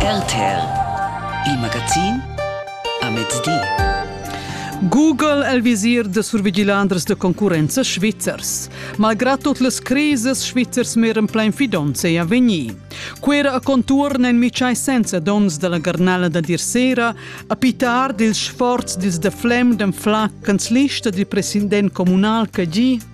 RTL Il magazin a mezdi. Google è il visir de survigilanders de concurrenza svizzers. Malgrad tot les crises svizzers meran plein fidonz ei avegnir. Quera a conturn en micai senza dons della garnala da dir sera, a pitar dils sforz dils de flem den flacans lista dil president comunal che gi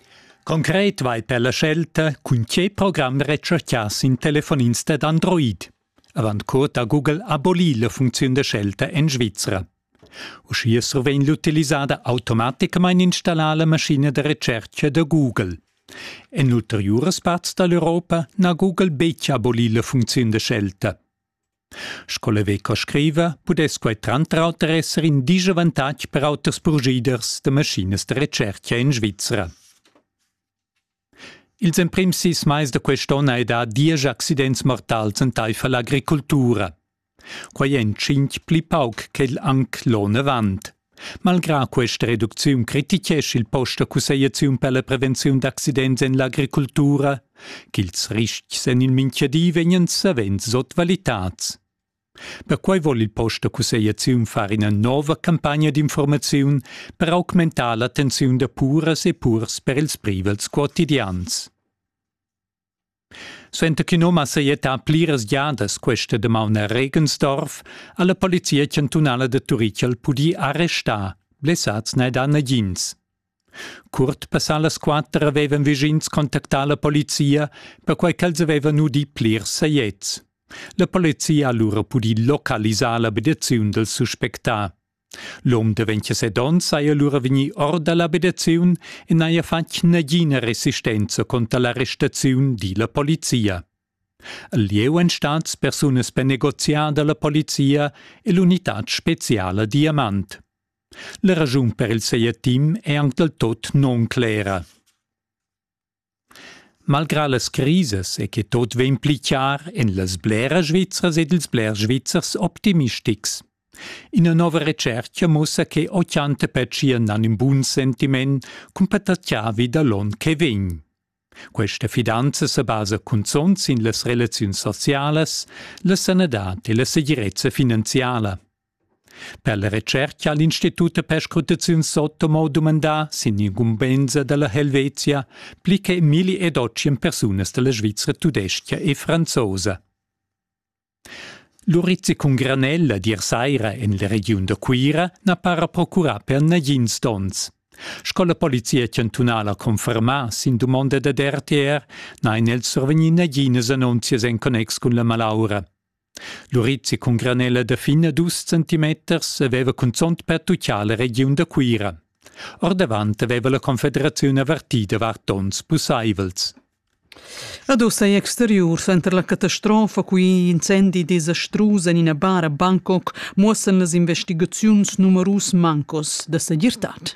Concret vai per la scelta cun tge program retschartgias in telefonist ed Android. Avant curt ha Google abolì la funcziun da scelta en Svizra. Uschia survegn l'utilisada automaticamain installà la maschina da recerca da Google. En ulteriuras parts da l'Europa n'ha Google betg abolì la funcziun da scelta. Sco la veca scriva, pudess quai tranter auter esser in disavantatg per auters purschiders da maschinas da retschertga en Svizra. Ils emprims sis mais da quest'onn hai dà diesch accidents mortals entaifer l'agricoltura. Quai èn tschintg pli pauc ch'el anc l'onn avant. Malgrà questa reducziun critichescha il post da cussegliaziun per la prevenziun d'accidents en l'agricultura ch'ils ristgs en il mintgadi vegnan savens sotvalitads. Perquai vul il post da cussegliaziun far ina nova campagna d'informaziun per augmentar l'attenziun da puras e purs per ils privels quotidians. Suenter ch'in um ha sajettà pliras giadas questa damaun a Regensdorf, ha la polizia chantunala da Turichel pudì arrestar. Blessads n'è dà nagins. Curt passà las quatter avevan vischins contactà la polizia, perquai ch'els avevan udì plirs sajets. La polizia ha lura pudì localisar l'abitaziun dal suspectà. L'um de 27 onns saja lura vegni or da l'abitaziun e n'haja fatg nagina resistenza contra la restaziun, di la polizia. Il lieu èn stats persunas per negoziar da la polizia e l'unitad speciala Diamant. La raschun per il saja team è anc dal tot non clera. Malgrà las crisas è che tot vegn pli chiar en las bleras Svizzras ed ils blers Svizzers optimistics. Ina nova retschertga mussa che 80 pertschien han in bun sentiment cun patattavi da l'onn che vegn. Questa fidanza sa basa cunzont sin las relaziuns socialas, la sanadad e la segirezza finanziala. Per la retscherca ha l'Institut da perscrutaziun Sotomo dumandà sin incumbensa da la Helvetia pli che milli ed otschien persunas da la Svizra tudestga e franzosa. L'urizzi cun granel la Diersaira en la regiun da Cuira n'ha para procurà per nagins donns. Sco la polizia chantunala confermà sin dumonda dad RTR n'han els survegnì naginas annunzias en connex cun la malaura. L'urizi cun granella da fin a dus centimeters aveva cunzont pertutgà la regiun da Cuira. Ordavant aveva la Confederaziun avertì davart onns pussaivels. Ad oz ei exteriur suenter la catastrofa cui incendi desastrus en ina bar a Bangkok muossan las investigaziuns numerus mancos da segirtad.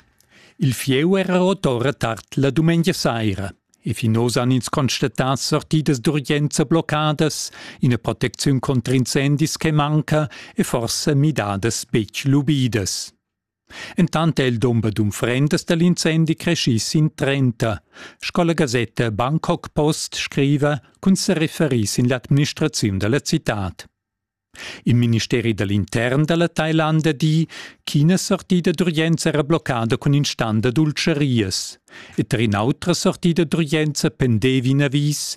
Il fieu era rot ora tard la dumengia saira. E finos han ins constatà sortidas d'urgenza bloccadas, ina protecziun contra incendis che manca e forsa midadas betg lubidas. Entant è il dumber d'unfrendas dal incendi creschì sin 30, sco la gasetta Bangkok Post scriva, cun sa referir sin l'administraziun da la citad. Il ministeri da l'intern da la Tailanda di ch'ina sortida d'urgenza era bloccada cun in stand da dultscharias. E tar in'autra sortida d'urgenza pendevi in avis